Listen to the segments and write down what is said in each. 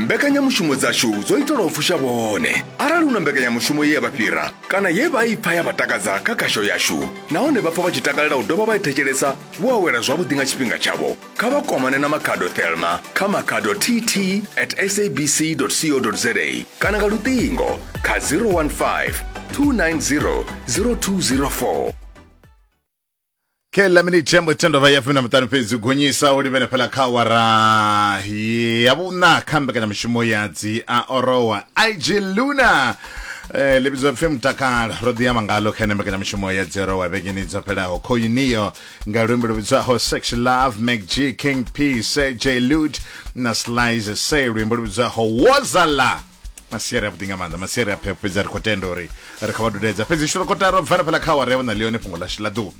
mbekanyamushumo dzashu dzo itelwa u fusha vhone arali hu na mbekanyamushumo ye ya vha fhira kana ye vha i pfa ya vha takadza kha khasho yashu nahone vha pfa vha tshi takalela u dovha vha i thetshelesa vho awela zwavhuḓi nga tshifhinga tshavho kha vha kwamane na makhado thelma kha makhado tt at sabc co za kana nga luṱingo kha 015 290 0204 kheḽa minithe ya mutendo vha ya fumi na muṱanu fhedzi u gonyisa u livhele fhala kha awara ya vhuṋa kha mbekanyamushumo ya dzi a orowa ig luna Eh, ḽi vhidzwa pfi mutakalo ro ḓi amba ngalo kha ine mbekanyamushumo ya dzi orowa vhegeni dzo fhelaho khoyuniyo nga luimbo lu vhidzwaho sex love mcg king p sj lud na slice se luimbo lu vhidzwaho wozala masiari avhuḓi nga maanḓa masiari a phepho fhedzi a ri khou tenda uri ri kha vha dudedza fhedzi shuro kotara u bvela fhela kha awara ya vhona ḽione fhungo ḽashu ḽa ḓuvha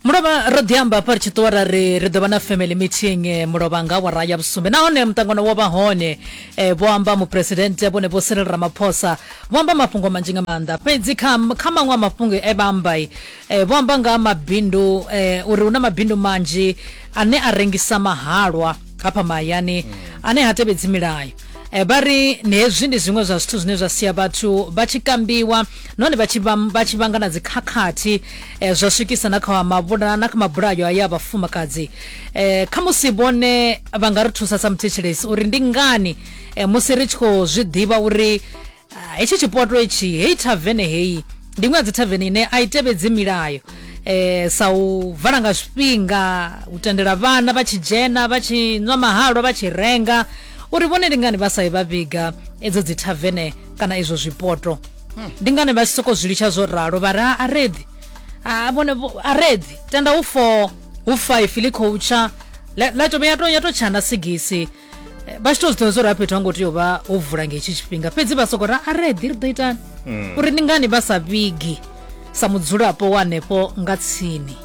mulovha ro ḓi amba hafha ri tshi ṱuwa ra ri ri ḓo vha na family meeting eh, mulovha nga awara ya vhusumbe nahone muṱangano wo vha hone eh, vho amba muphuresidennde vhone vho sirel ramaphosa vho amba mafhungo manzhi nga maanḓa fhedzi kha kha maṅwe a mafhungo e vha amba i, eh, vho amba nga ha mabindu eh, uri hu na mabindu manzhi ane a rengisa mahalwa hafha mahayani ane ha tevhedzi milayo Eh, vha ri ni hezwi ndi zwiṅwe zwa zwithu zwine zwa sia vhathu vha tshi kambiwa nahone vha tshi vam- vha tshi vhanga na dzikhakhathi eh, zwa swikisa na kha mabula na kha mabulayo aya a vhafumakadzi eh, kha musi vhone vha nga ri thusa sa muthetshelesi uri ndi ngani eh, musi ri tshi khou zwi ḓivha uri Ah, hetshi tshipoto etshi heyi thavene heyi ndi iṅwe ya dzi thavene ine a i tevhedzi milayo eh, sa u vala nga zwifhinga u tendela vhana vha tshi dzhena vha tshi nwa mahalwa vha tshi renga uri vhone ndi ngani vha sa i vha vhiga edzo dzi thavene kana izwo zwipoto ndi ngani vha tshi soko zwi litsha zwo ralo vha ri "Ah, a redi a vhone vho- a redi tenda hu four hu five ḽi khou tsha la la to ya to ya to tshana sigisi Eh, vha tshi to zwiḓivha zwo ri fhethu ha ngo tea u vha ho vula nga hetshi tshifhinga fhedzi vha soko ra a ri eḓi ri ḓo itani mm. uri ndi ngani vha sa vhigi sa mudzulapo wa hanefho nga tsini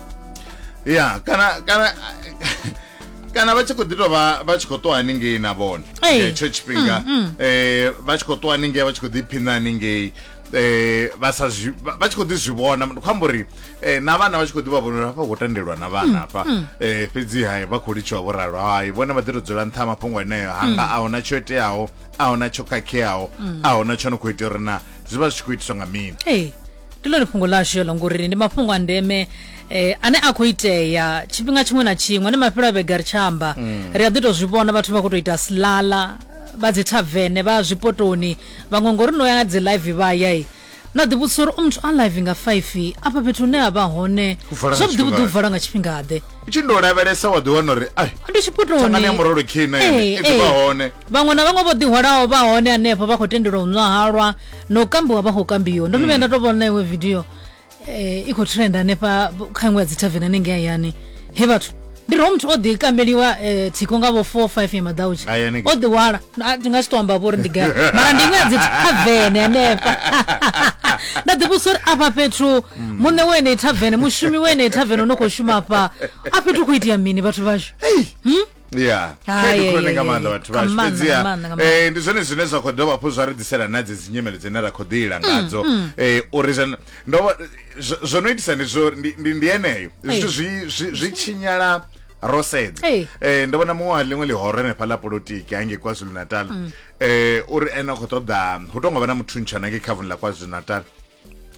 ya kana kana kana vha tshi khou ḓi tou vha vha tshi khou ṱuwa haningei na vhone hetsho tshifhinga um vha tshi khou ṱuwa haningei vha tshi khou ḓi phina haningei eh vha sa zwi vha tshi kho ḓi zwi vhona ndi khou amba uri eh na vhana vha tshi kho ḓi vha vhona hafha ho tendelwa na vhana mm, hafha mm. eh fhedzi hai vha khou litshiwa vho ralo hai vhone vha ḓi to dzula nṱha mafhungo eneo hanga mm. a hona tsho iteaho a hona tsho khakheaho a hona tsho no khou itea uri na zwi vha zwi tshi khou itiswa nga mini ee ndi ḽone fhungo ḽashu yo longori ndi mafhungo a ndeme eh ane a khou itea tshifhinga tshiṅwe na tshiṅwe ne mafhelo a vhega ri tshi amba ri a ḓi to zwi vhona vhathu vha khou to ita silala vha dzi thavene vha zwipotoni Vhaṅwe ngori no ya nga dzi live vha ya na ḓi vhudzisa uri u muthu a live nga 5 afha fhethu hune a vha hone zwavhuḓi vhuḓi u vala nga tshifhinga ḓe u tshi ndo lavhelesa wa ḓi wana uri ai ndi tshipotoni ya murolo khina i ḓi vha hone vhaṅwe na vhaṅwe vho ḓi hwalaho vha hone hanefho vha khou tendelwa u nwa halwa na u kambiwa vha khou kambiwa ndo no vhuya nda to vhona iwe video eh, i khou trenda hanefha kha iṅwe ya dzi tavern anenge hayani he vhathu ndi ro muthu o ḓi kambeliwa eh, thiko nga vho four five ya madautsha Aya ni- o ḓiwala A, ndi nga si to amba vho uri ndi gai mara ndi iṅwe ya dzi tavern hanefha nda ḓivhusa uri afha fhethu Mm. muṋe wa enei tavern mushumi wa enei tavern o no khou shuma afha a fhethu khou itea mini vhathu vhashu ya Hai, khaedu khulwane ai, nga ai, maanḓa ai. vhathu Nga vhashu maanḓa, fhedziha nga maanḓa, nga maanḓa. eh, ndi zwone zwine zwa khou dovha hafhu zwa ri ḓisela na dze dzi nyimele dzine ra khou ḓiila Mm, ngadzo Eh, uri zwo- ndo vho- zwo- zwo no itisa ndi zwo ndi- ndi ndi yeneyo zwithu Eh. zwi- zwi- zwi tshinyala ro sedza Eh. Eh, ndo vhona muṅwe wa ḽiṅwe ḽihoro henefha ḽa polotiki hange kwazulu natal Mm. eh uri ene a khou ṱoḓa hu tongo vha na muthu ntshana ngei khavuni ḽa kwazulu natal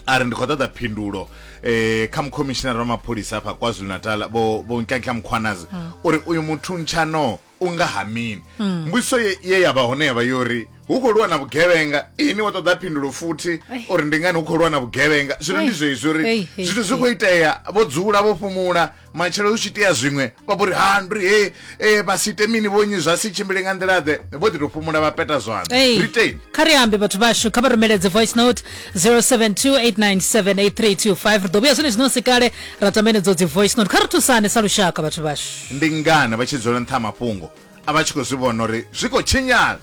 a ri ndi khou ṱoḓa phindulo um kha mukhomishinara wa mapholisa afha kwazulu natal vho vho nkankhla mukhwanazi hmm. uri uyu muthu ntshano u nga ha mini hmm. mbudziso ye ya vha hone ya vha yo ri hu khou lwa na vhugevhenga ini wa ṱoḓa phindulo futhi uri ndi ngani hu khou lwa na vhugevhenga zwino ndi zwezwi uri zwithu zwi khou itea vho dzula vho fhumula matshelo hu tshi itea zwiṅwe vha vho ri ha ndi ri he e vha si ite mini vhonyi zwa si tshimbile nga nḓila ḓe vho ḓi tou fhumula vha peta zwanḓa Hey, ri teni kha ri ambe vhathu vhashu kha vha rumeledze voice note 0728978325 ri ḓo vhuya zwenezwi no si kale ra tamba enedzo dzi voice note kha ri thusane sa lushaka vhathu vhashu ndi ngani vha tshi dzula nṱha ha mafhungo a vha tshi khou zwi vhona uri zwi khou tshinyala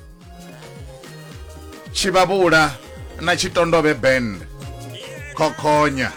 tshivhavhula na tshitondove band khokhonya